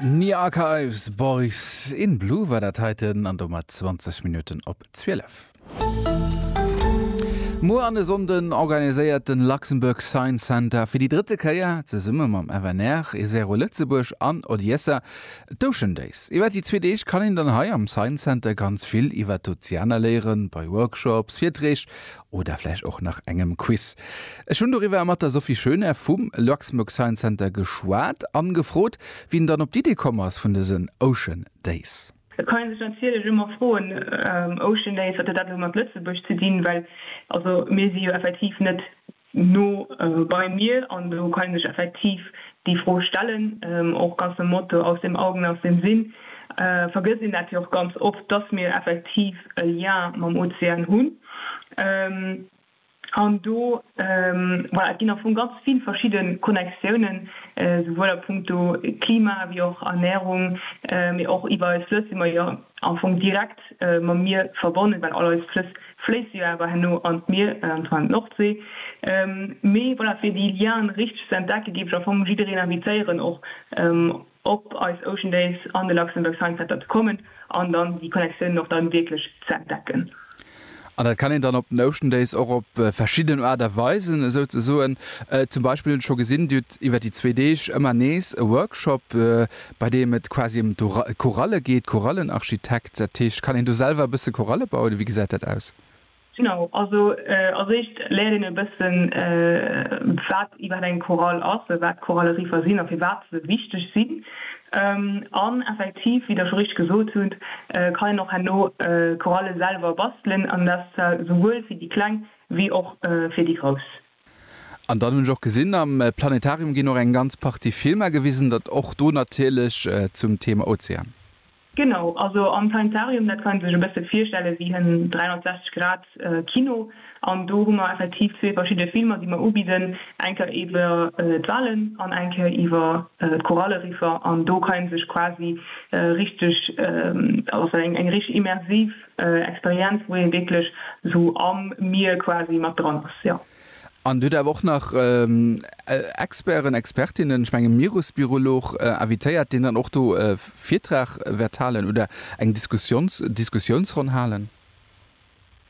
Nia Archives, Boys in Blue war dat heiten an domat 20 Minutten op 12. Muer an e Sonnden organiséiert den Luxembourg Science Center fir déi drëtte Kéier, zesumme mam FNR, Esero Lëtzebuerg an Odiessa, d'Ocean Days. Iwwer déi zwee Deeg kann een dann hei am Science Center ganz vill iwwer d'Ozeaner léieren, bei Workshops, Virträg Oder vläicht och nach engem Quiz. Ech hunn doriwwer mat der Sophie Schoener vum Luxmg Science Center geschwat an gefrot, wien dann op d'Idee komm ass vun dësen Ocean Days. Et kann ee sech natierlech ëmmer froen, Ocean Days, wat huet dat elo mat Lëtzebuerg ze dinn? Well also mir si jo effektiv net no beim Mier an do kann ee sech effektiv déi Fro stellen, och ganz nom Motto, aus dem Augen, aus dem Sinn. Vergësst een dat jo och ganz oft, dass mir effektiv e Lien mam Ozean hunn. An do, voilà, et ginn am Fong ganz vill verschidde Connectiounen, souwuel a punkto Klima wéi och Ernährung, mee och iwwer eis Flëss si mer jo am Fong direkt mam Mier verbonnen, well all eis Flëss fléisse jo awer herno an d'Mier, an zwar an d'Nordsee. Mee voilà, fir déi Lienen richteg ze entdecken, géif ech am Fong jiddereen invitéieren, och op eis Ocean Days an de Luxembourg Science Center ze kommen an dann déi Connectiounen och dann wierklech ze entdecken. An dat kann een dann op den Ocean Days och op verschidden Aart a Weisen esou ze soen. Zum Beispill hunn ech scho gesinn, Dir hutt iwwer déi zwee Deeg ëmmer nees e Workshop, bei deem et quasi ëm d'Koralle geet, Korallenarchitekt. Dat heescht, kann een do selwer e bësse Koralle bauen oder wéi gesäit dat aus? Genau, also als éischt léiert een e bëssen, wat iwwerhaapt eng Chorale ass, wat Chorale-Riffer sinn a firwat se wichteg sinn. An effektiv, wéi Der scho richteg gesot hutt, kann een och herno Chorale selwer bastelen, an dat souwuel fir déi Kleng wéi och fir déi Grouss. An dann hunn ech och gesinn, am Planetarium ginn och eng ganz Partie Filmer gewisen, dat och do natierlech zum Thema Ozean. Genau, also am Planetarium, dat kann ee sech e bësse virstelle wéi en 360 Grad Kino. An do hu mer effektiv zwee verschidde Filmer, déi mer ubidden, eng Kéier iwwer d'Walen an eng Kéier iwwer d'Koralleriffer. An do kann ee sech quasi richteg, also eng richteg immersiv, Experienz wou een wierklech sou am Mier quasi mat dran ass jo. An huet awer och nach Experten, Expertinnen, ech mengen Mierusbiolog invitéiert deen dann och do e Virtrag wäert halen oder eng Diskussions Diskussionsronn halen?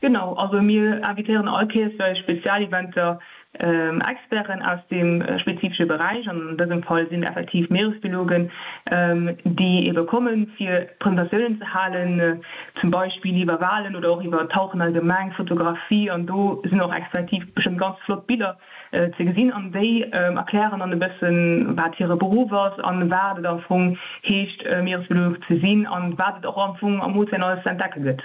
Genau, also mir invitéieren all Kees bei Spezialeventer Experten aus deem spezifesche Beräich, an dësem Fall sinn effektiv Meeresbiologen, déi ebe kommen, fir Presentatiounen ze halen, zum Beispill iwwer Walen oder och iwwer Tauchen allgemeng, Fotografie, an do sinn och effektiv bestëmmt ganz flott Biller ze gesinn, an déi erklären dann e bëssen, wat hire Beruff ass an wat et am Fong heescht, Meeresbiolog ze sinn an wat et och am Fong am Ozean alles ze entdecke gëtt.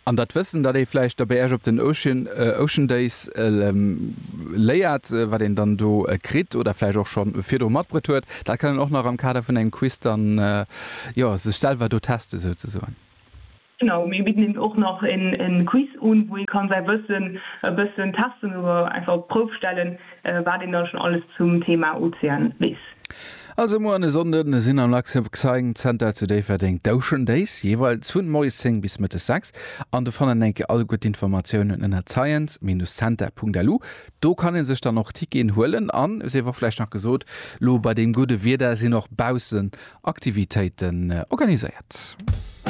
An dat Wëssen, dat ee vläicht da bei Äech op den Ocean, Ocean Days léiert, wat een dann do kritt oder vläicht och scho virdru matbruet huet, dat kann een och nach am Kader vun engem Quiz dann, jo, sech selwer do testen, souzesoen. Genau, mir bidden eben och nach e Quiz un, wou ee kann säi Wëssen e bëssen testen oder einfach op d'Prouf stellen, Wat een da schon alles zum Thema Ozean wees. Also muer an e Sonnden sinn am Luxembourg Science Center zu Déifferdeng d'Ocean Days, jeeweils vun moies 10 bis mëttes 6. An de fannen enke all gutt Informatiounen ënnert science-center.lu. Do kann een sech dann och Ticketen huelen an et sief och vläicht nach gesot, lo bei deem gudde Wieder sinn och baussen Aktivitéiten organiséiert.